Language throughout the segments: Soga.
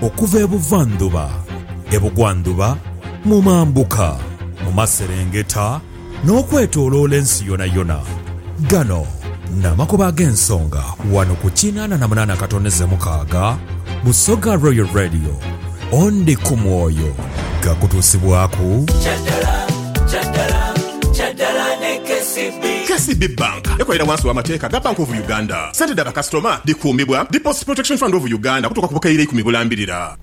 Okuva ebuvandhuba, ebugwandhuba, mu mambuka, mu maserengeta, n'okwetoloola ensi yonayona. Gano n'amakubo ag'ensonga wano ku kinaana na munaana katondeze mukaaga Busoga Royal Radio. Ondi ku mwoyo gakutuusibwaku. KCB Bank ekolera wansi w'amateeka ga Bank of Uganda. Sente dha bakasitoma dhikuumibwa Deposit Protection Fund of Uganda okutuuka ku bukaire eikumi bulambirira.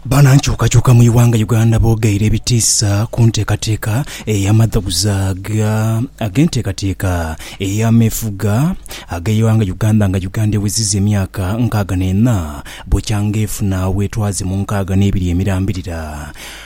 Banankyukakyuka mu ighanga Uganda bogeire ebitiisa ku nteekateeka eyamadhoguza agenteekateeka eyameefuga ageighanga Uganda nga Uganda eweziza emyaka nkaaga neena bukyanga efuna obwetwaze mu nkaaga nebiri emirambirira.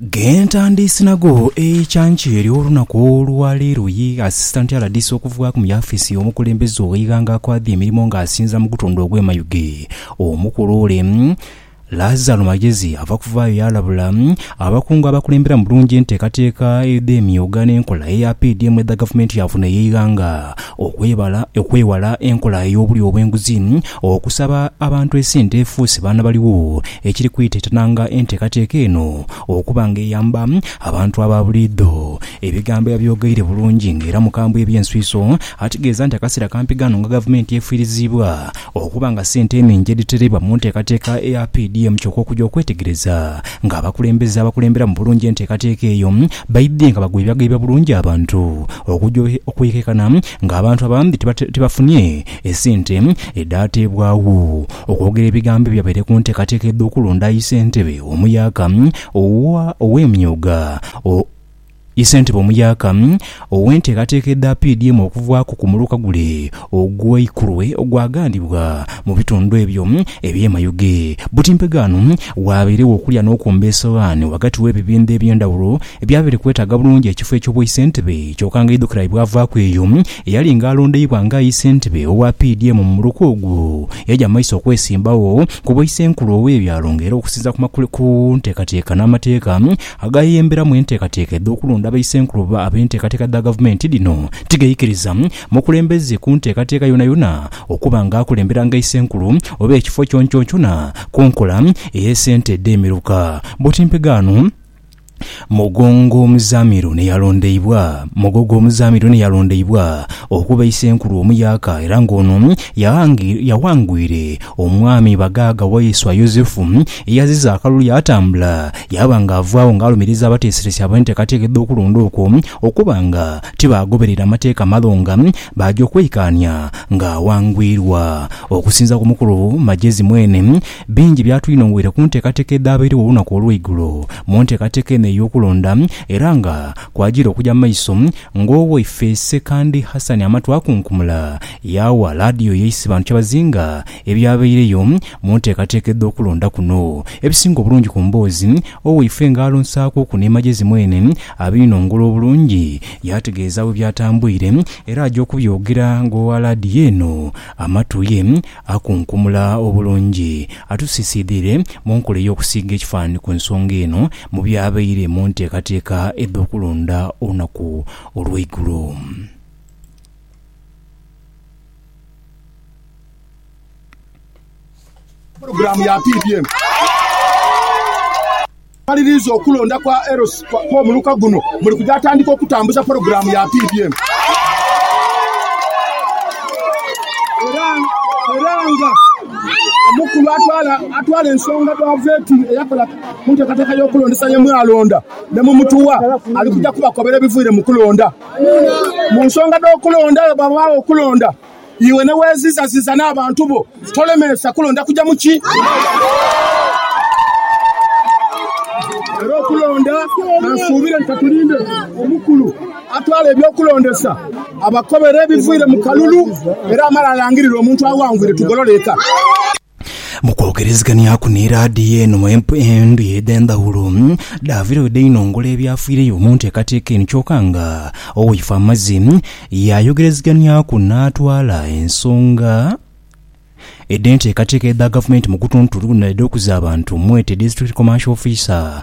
Gentandiisi nago eikyankya eryo olunaku olwa leero ye Asisitanti RDC okuvughaku mu yafiisi y'omukulembeze ow'eighanga akwadha emirimo nga asinza mu gutundu ogw'e Mayuge. Omukulu ole Lazaro Magyezi ava kuvaayo yalabula abakungu abakulembera mu bulungi enteekateeka edh'emyooga n'enkola eya PDM edha gavumenti yaafuna ey'eighanga okwebala okwewala enkola ey'obulyo obw'enguzi okusaba abantu esente efuuse baana baligho ekiri kwitetananga enteekateeka eno okuba nga eyamba abantu aba buliidho. Ebigambo yabyogeire bulungi nga era mukambwe eby'enswiso ategeeza nti akaseera kampi ghano nga gavumenti efiiriziibwa okuba nga ssente enhingi edhitereibwa mu nteekateeka eya PDM kyoka okuja okwetegereza nga abakulembeze abakulemberamu bulungi enteekateeka eyo baidhye nga bagwebyageibya bulungi abantu okuja okwekekana nga abantu abandhi tibafunye Esente edhaateebwagho okwogera ebigambo ebyo abaire ku nteekateeka edh'okulonda aye ssentebe omuyaaka owa ow'emyooga o ye ssentebe omuyaaka ow'enteekateeka edha PDM okuvaaku ku muluka gule ogwa Ikurwe ogwagandibwa mu bitundu ebyo eby'e Mayuge buti mpegaano waabairegho okulya n'okwomba esowaani ghagati w'ebibindho eby'endhawulo ebyabaire kwetaaga bulungi ekifo eky'obwaisentebe kyoka nga aidhukira bwe bwavaaku eyo Eyali nga alondeibwa nga aye ssentebe owa PDM mu muluka ogwo, yaja maiso okwesimbagho ku bwa isenkulu owe byalo nga era okusinzira ku makule ku ntekateka na mateeka agayeyemberamu entekateka edho kulonda ba isenkulu oba abe ntekateka dha gavumenti dhino tigaikiriza mukulembeze ku ntekateka yonayona okuba nga akulembera nga isenkulu oba ekifo kyonkyonkyona ku nkola eye sente edhe miruka. Bwoti mpegaano. Mugongo omuzamiru ni yalondeibwa Mugogo omuzamiru ni yalondeibwa okuba Isenkulu omuyaaka era nga ono yaghangwire omwami Bagaaga Waiswa Yozefu eyaziza akalulu yaatambula yaaba nga avaagho nga alumiriza abateeseresi ab'enteekateeka edh'okulonda okwo okuba nga tibaagoberera mateeka malo nga baaja okweikaania ng'aghangwirwa. Okusinza ku mukulu Magyezi mwene, Bingi byatwinhongoire ku nteekateeka edhaabairegho olunaku olweigulo mu nteekateeka eno ey'okulonda era nga kwajiira okuja mu maiso ng'owaiffe Ssekandi Hassan Amatu akunkumula yaawa laadiyo ye Isibantu kyebazinga ebyabaireyo mu nteekateeka edh'okulonda kuno. Ebisinga obulungi ku mboozi owaiffe nga alonsaakuku ni Magezi mwene abiinhongola obulungi yaategeeza bwe byatambwire era aja okubyogera ng'owa laadiyo eno Amatu ye Akunkumula obulungi atusiisiidhire mu nkola ey'okusiiga ekifaananhi ku nsonga eno mu by'abaire mu nteekateeka edh'okulonda olunaku olw'eigulo. Amaliriza okulonda kwa LC kw'omuluka guno muli kuja atandika okutambuza pulogulaamu ya PBM era nga omukulu atwala ensonga dha Vetting eyakola ku nteekateeka y'okulondesa ye mwalonda ne mu mutuwa ali kuja kubakobera ebiviire mu kulonda. Mu nsonga dh'okulonda bwe ghabagho okulonda, Iwe ne weeziizaziiza n'abantu bo, tolemeesa kulonda kuja mu ki? Era okulonda ka nsuubire nti ka tulinde omukulu atwala eby'okulondesa abakobere ebiviire mu kalulu era amale alangirire omuntu aghangwire tugolole eka. Mu kwogereziganiaku ni laadiyo eno endhuyi edh'endhaghulo, dhaavire bwe dheinongola ebyafiireyo mu nteekateeka eno kyoka nga Owaife amaze yaayogereziganiaku n'atwala ensonga edh'enteekateeka edha Gavumenti mu gutuntu guno edh'okuza abantu mwete District Commercial Officer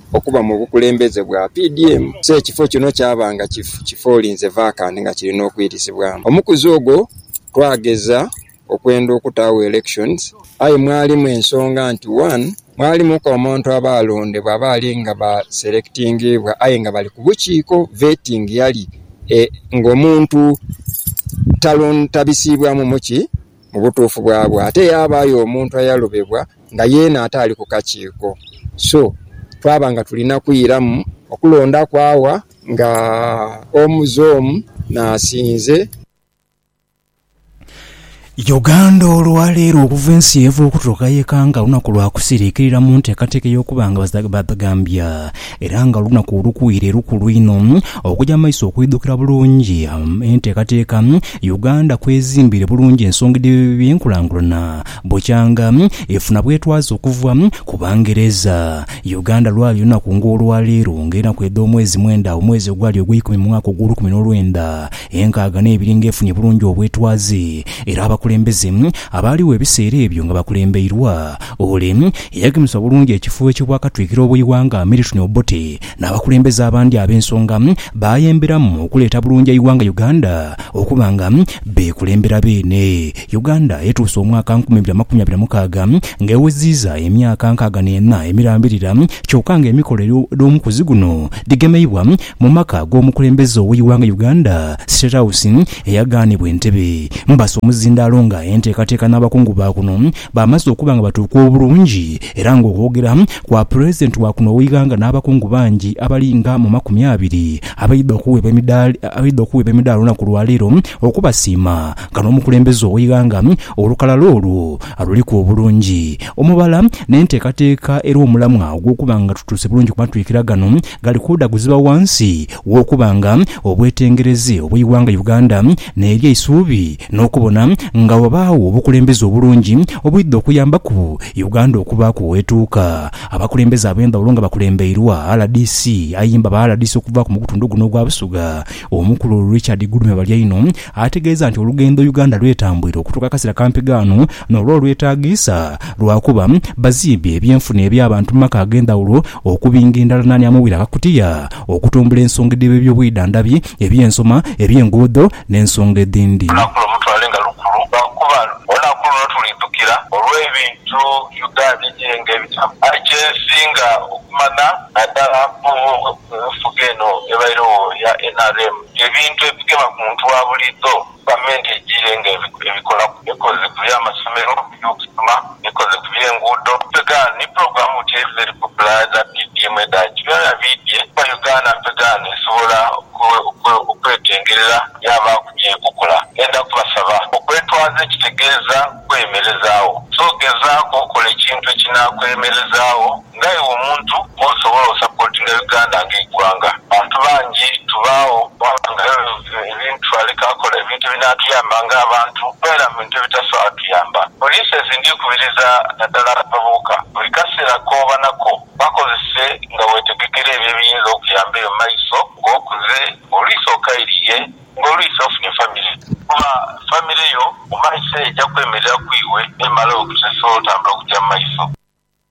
okuba mu bukulembeze bwa PDM, so ekifo kino kyaba nga kifoolinze vacant nga kirina okwirisibwamu omukuzi ogwo. Twageza okwenda okutaagho elections aye mwalimu ensonga nti one mwalimuku omuntu aba alondebwa abaali nga ba selectingiibwa aye nga bali ku bukiiko, vetting yali nga omuntu tabisiibwamu muki. mu butuufu bwabwo. Ate yaabaayo omuntu ayalobebwa nga yeena ate ali ku kakiiko. So, twaba nga tulina kwiramu okulondaku awa nga omu zoomu n'asinze. Uganda olwaleero okuva ensi yeeva okutuuka yekanga lunaku lwa kusiriikirira mu nteekateeka ey'okuba nga badhagambya Era nga olunaku olukuire lukulu inho okuja mu maiso okwidhukira bulungi enteekateeka Uganda kwezimbire bulungi ensonga edh'ebyenkulangulana bukyanga efuna bwetwaze okuva ku Bangereza. Uganda lwali lunaku nga olwa leero nga enaku edh'omwezi mwenda omwezi ogwali ogweikumi mu mwaka ogw'olukumi n'olwenda enkaaga n'ebiri nga efunye bulungi obwetwaze era abakulembeze abaaliwo ebiseera ebyo nga bakulembeirwa Ole yagemesa obulungi ekifo eky'obwakatwikiro bw'eighanga Milton Obote n'abakulembeze abandi ab'ensonga baayemberamu okuleeta bulungi eighanga Uganda okuba nga beekulembera beene. Uganda etuuse omwaka nkumi ibiri amakumi abiri na mukaaga nga eweziiza emyaka nkaaga n'ena emirambirira kyoka nga emikolo edh'omu kwezi guno dhigemeibwa mu maka g'omukulembeze ow'eighanga Uganda, State House, eyagaanibwa entebe. Mbasa omuzindaalo nga enteekateeka n'abakungu baakuno Baamaze okuba nga batuuka obulungi era nga okwogera kwa Pulezidenti wa kuno ogh'eighanga n'abakungu bangi abali nga mu makumi abiri abaidha okuweebwa emidaali abaidha okuweebwa emidaali olunaku lwa leero okubasiima nga n'omukulembeze ow'eighanga olukalala olwo aluliku obulungi omubala n'enteekateeka era omulamwa ogw'okuba nga tutuuse bulungi ku matwikira gano gali kwidha guziba ghansi w'okuba nga obwetengereze obw'eighanga Uganda n'eryeisuubi n'okubona nga wabaagho obukulembeze obulungi obwidha okuyambaku Uganda okubaaku wetuuka. Abakulembeze abendhawulo nga bakulembeirwa rdc ayimba ba rdc okuvaaku mugutundhu guno ogwa Busoga omukulu Richard Gulume Balyaino ategeeza nti olugendo Uganda lwetambwire okutuuka akasera kampi ghano nolwo olwetagiisa lwakuba bazimbye ebyenfuna ebyabantu mumaka agendhawulo okubinga endala nani amubwire akakutiya okutumbula ensonga edhebebyobuidhandhabi eby'ensoma, eby'enguudo n'ensonga edhindi. Olunaku luno mulutwale nga lukulu lwakuba olunaku luno tulidhukira olw'ebintu Uganda ejirenga ebitamu. Aye kyensinga okumana nadala ku nfuga eno ebaire wo eya nrm, ebintu ebigema ku muntu wa buliidho. Gavumenti ejiire nga ebikola ekoze ku by'amasomero, eby'okusoma, ekoze ku by'enguudo, mpegaano ni pulogulaamu buti edhiba edhiri kupula edha PDM edhaki. Byonabyona biidhye kuba Uganda mpegaano esobola okwetengerera yaabaaku by'ekokola. Ndenda kubasaba okwetwaza ekitegeeza kwemerezaagho. So gezaaku okola ekintu ekinaakwemerezaagho. Nga iwe omuntu osobola osapotinga Uganda nga eighwanga? Bantu bangi tubaagho ghabangayo ebintu aleke akole ebintu ebinatuyamba nga abantu tobeera mu bintu ebitasobola tuyamba. Polices ndikubiriza nadala abavubuka buli kaseera kooba nako bakozese nga wetegekera ebyo ebiyinza okuyamba eyo mumaiso nga okuze, olwisi okairiye, nga olwisi ofunye famire. Kuba famire yo mumaiso eyo eja kwemerera ku iwe nemala ewe kuteesobola otambula kugya mumaiso.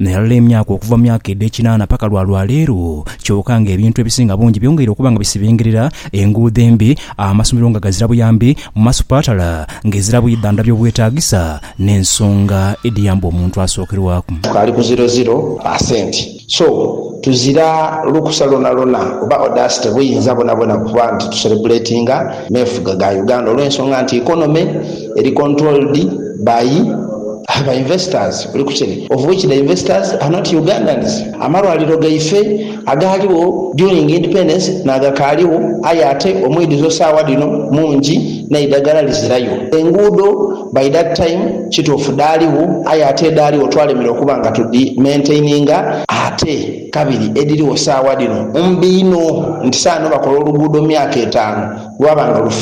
Nairala emyaka okuva mu myaka edh'ekinaana paka lwa lwa leero, kyoka nga ebintu ebisinga bungi byongeire okuba nga bisibengerera, enguudo embi, amasomero nga gazira buyambi, mu masupatala nga ezira bwidhandhabi obwetaagisa, n'ensonga edhiyamba omuntu asookerwaku. Tukaali ku ziro ziro percent so tuzira lukusa lwonalwona oba audacity buyinza bwonabwona kuba nti tuserebuletinga meefuga ga Uganda olw'ensonga nti economy Eri controlled by ba investors oli kukiri of which the investors are not Ugandans. Amalwaliro gaife agaaliwo during independence n'agakaaliwo aye ate omwidhuzo saawa dhino mungi n'eidhagala lizirayo. Enguudo by that time kituufu dhaaliwo aye ate edhaaliwo twalemera okuba nga tudhi maintaininga ate kabiri edhiriwo saawa dhino mbi inho nti saano bakola oluguudo mu myaka etaanu lwaba nga lufi.